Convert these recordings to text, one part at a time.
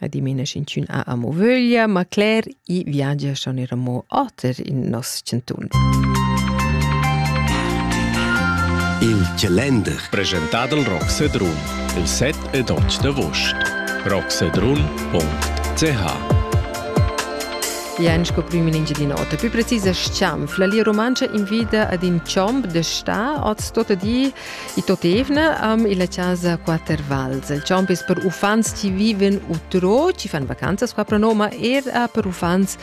Adimena sch'inchün ha amo vöglia, ma cler i viagia schon eir amo oter in nos chantun. Il calender presentà dal Rock Sedrun il 7 ed 8 d'agost. rocksedrun.ch Jan sco prim in Engiadin'Ota. Più precisa scianfla, la Romancia invida ad in ciomb de sta, oz tota di I tot evna am illa chasa Quatter Vals. Il champ es per uffants chi viven utro, chi fan vacanzas qua pro Noma, er per uffants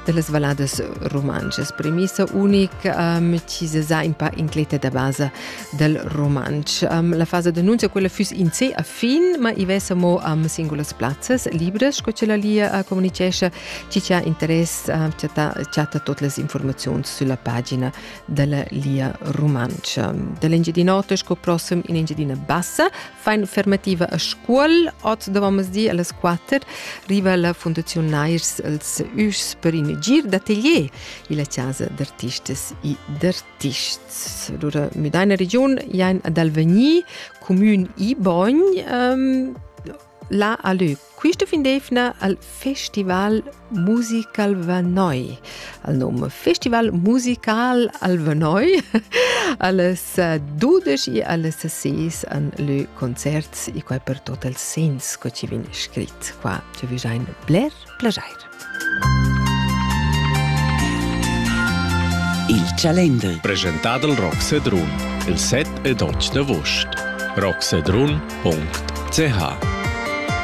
de las valadas romances. Premissa unica um, chi se sa in pa incleta da basa del romanch. Um, la fasa d'annunzio quella füss in se a fin, ma i vesa mo am singulas plazzas libres, co ce la lia uh, comunicescia, chi c'ha interess, uh, chatta, chatta tot las informazioni sulla pagina della Lia Rumantscha. Dell'Engiadin'Ota sco prossem in Engiadina Bassa fa un'affermativa a Scuol. Oz davamos di alle 4 riva la Fondazione Nairs als Üs per in gir d'atelier illa casa d'artistes e d'artists. Allora, müda in region ein ad Alvagni, comün Ibogn, ehm, là a Lög Quista fin d'eivna al Festival Musical Vernoi. Al nom Festival Musical al Vernoi alles 12 e alles 6 an lö concerts e quai per tot els sens co ci vin scrit qua. Ci vi jain bler plajair. Il Calender Presentat al Rock Sedrun il 7 e 12 d'agost. rocksedrun.ch